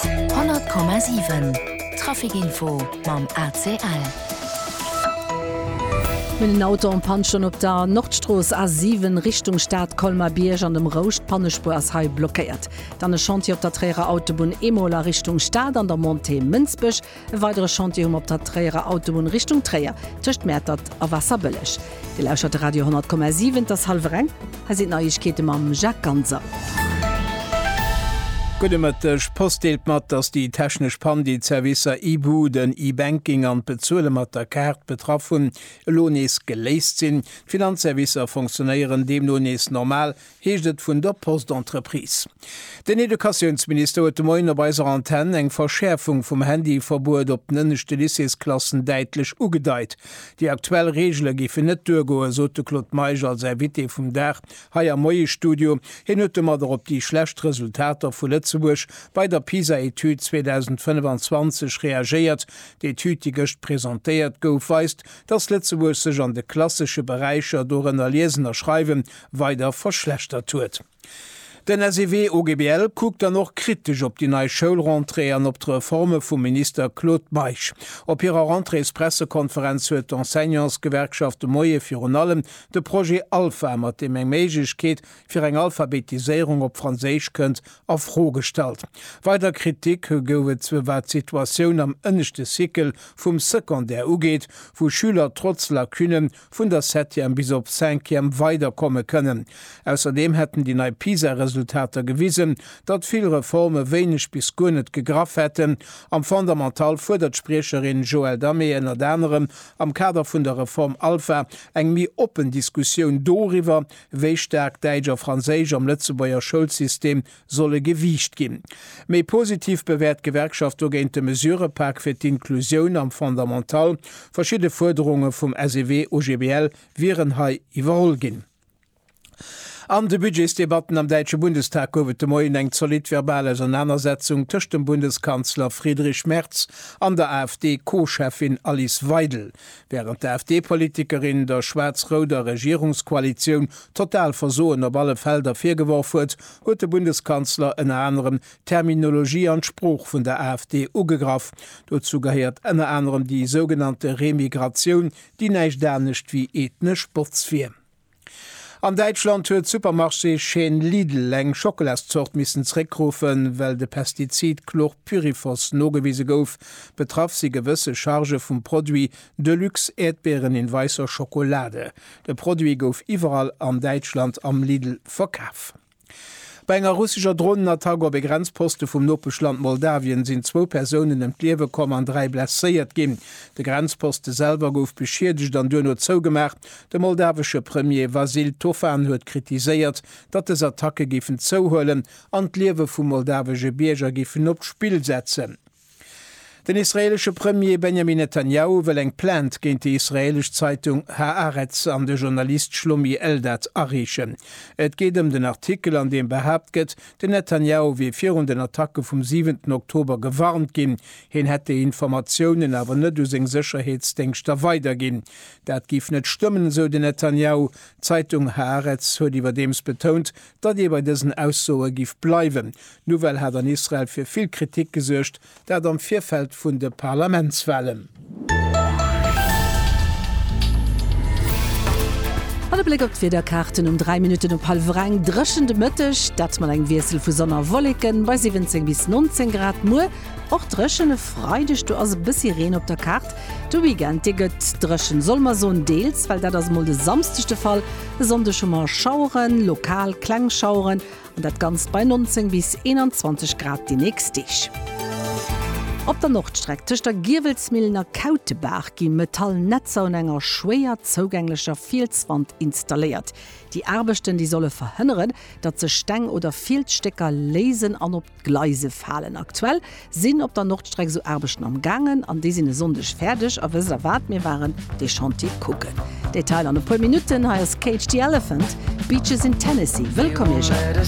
100,7 Traficinfo mam ACL. Mir hunn en Auto en Panne, schonn op der Nordstrooss A7 Richtung Stad, Colmar-Bierg an dem Rouscht. D'Pannespuer ass hei blockéiert. Dann e Chantier op der Tréierer Autobunn Emol a Richtung Stad an der Montée Mënsbech. E weidere Chantier hu mer op der Tréierer Autobunn Richtung Tréier, tëscht Mäertert a Waasserbëlleg. Dir lauschert de Radio 100,7, et ass hallwer eng, hei sinn d'Neiegkeete mam Jacques Ganser. Gudde Mëtteg, d'Post deelt mat, datt déi technesch Pann, déi d'Servicer e-Buden, e-Banking an d'Bezuele mat der Kaart betraff hunn, elo nees geléist sinn. D'Finanzservicer fonctionéieren deemno nees normal, heescht et vun der Post-Entreprise. Den Educatiounsminister huet de Moien op eiser Antenn eng Verschäerfung vum Handyverbuet op den ënneschte Lycéesklassen däitlech ugedeit. Déi aktuell Reegele géifen net duergoen, sot de Claude Meisch als Invité vum Dag hei am Moie-Studio. Hien huet domadder op déi schlecht Resultater vu Lëtzebuerg bei der PISA-Etüd 2025 reagéiert. D'Etüd, déi gëscht presentéiert gouf, weist, datt Lëtzebuerg sech an de klassesche Beräicher, dorënner Liesen a Schreiwen, weider verschlechtert huet. Den SEW OGBL kuckt dann och kritesch op déi nei Schoulrentrée an op d'Reforme vum Minister Claude Meisch. Op hirer Rentréespressekonferenz huet d'Enseignantsgewerkschaft de Moie virun allem de Projet Alpha, mat deem eng Méiglechkeet fir eng Alphabetiséierung op Franséisch kënnt, a Fro gestallt. Weider Kritik gouf et wat d'Situatioun am ënneschte Cycle vum Secondaire ugeet, wou Schüler trotz Lacunnen vun der Septième bis op Cinquième weiderkomme kënnen. Ausserdeem hätten déi nei PISA-Resultater gewisen, datt vill Reforme wéineg bis guer net gegraff hätten. Am Fondamental fuerdert d'Spriecherin Joëlle Damé ënnert anerem am Kader vun der Reform Alpha eng méi oppen Diskussioun doriwwer, wéi staark Däitsch a Franséisch am Lëtzebuerger Schoulsystem solle gewiicht ginn. Méi positiv bewäert d'Gewerkschaft dogéint de Mesurëpak fir d'Inclusioun am Fondamental. Verschidde Fuerderunge vum SEW-OGBL wieren hei iwwerholl ginn. An de Budgetsdebatten am däitsche Bundestag gouf et de Moien eng zolidd verbal Ausernanersetzung tëscht dem Bundeskanzler Friedrich Merz an der AfD-Co-Cheffin Alice Weidel. Wärend d'AfD-Politikerin der schwaarz-rouder Regierungskoalitioun d'total Versoen op alle Felder virgeworf huet, huet de Bundeskanzler ënner anerem d'Terminologie an d'Sprooch vun der AfD ugegraff. Dozou gehéiert ënner anerem déi sougenannte Remigratioun, déi näischt anescht wéi ethnesch Botz wier. An Däitschland huet d'Supermarché-Chaîne Lidl eng Schockelas-Zort missen zeréckruffen, well de Pestizid Chlorpyrifos nogewise gouf. Betraff si gewësse Charge vum Produit, Deluxe Äerdbeeren in weisser Schokolade. De Produit gouf iwwerall an Däitschland am Lidl verkaf. Bei enger russescher Dronenattack op e Grenzposte vum Nopeschland Moldawien sinn zwou Persounen ëm d'Liewe komm an dräi blesséiert ginn. De Grenzposte selwer gouf beschiedegt an duerno zougemaach. De moldawesche Premier Vasyl Tofan huet kritiséiert, datt dës Attacke géifen zouhuelen an d'Liewe vu moldawesche Bierger géifen op d'Spill setzen. Den israeelesche Premier Benjamin Netanjahu wëll eng Plainte géint déi israeelesch Zeitung Haaretz an de Journalist Shlomi Eldad areechen. Et geet ëm den Artikel, an deem behaapt gëtt, den Netanjahu wier virun den Attacke vum siwenten Oktober gewarnt ginn, hien hätt déi Informatiounen awer net u seng Sécherheetsdéngschter weiderginn. Dat géif net stëmmen, esou den Netanjahu. D'Zeitung Haaretz huet iwwerdeems betount, datt ee bei dësen Aussoe giff bleiwen. D'Nouvelle hat an Israel fir vill Kritik gesuergt, dat am Virfeld vun de Parlamentswahlen. An e Bléck op d'Wiederkaarten um 3 Minutten op hallwer eng, Dréchen de Mëtteg, dat mat engem Wiessel vu Sonn a Wolleken bei 17 bis 19 Grad. Muer och dréchen, e Freideg do ass e bëssi Reen op der Kaart. De Weekend dee gëtt dréchen, soll mer soen deels, well dat ass emol de Samsdeg de Fall. E Sonndeg hu mer Schaueren, lokal kleng Schaueren, an dat Ganzt bei 19 bis 21 Grad déi nächst Deeg. Op der Nordstreck tëscht der Giewelsmillen a Kautebaach gi metall Netzer un enger schwéier zougänglecher Fielswand installéiert. Déi Aarbechten, déi solle verhënneren, datt sech Steng oder Fielsstécker léisen an op. D'Gleise falen aktuell, sinn op der Nordstreck esou Aarbechten am gaangen an déi sinn e Sonndeg fäerdeg. A wësst der wat, mir waren dee Chantier kucken. Detail an e puer Minutten, hei ass Cage the Elephant, Beaches in Tennessee. Wëllkomm Iech all.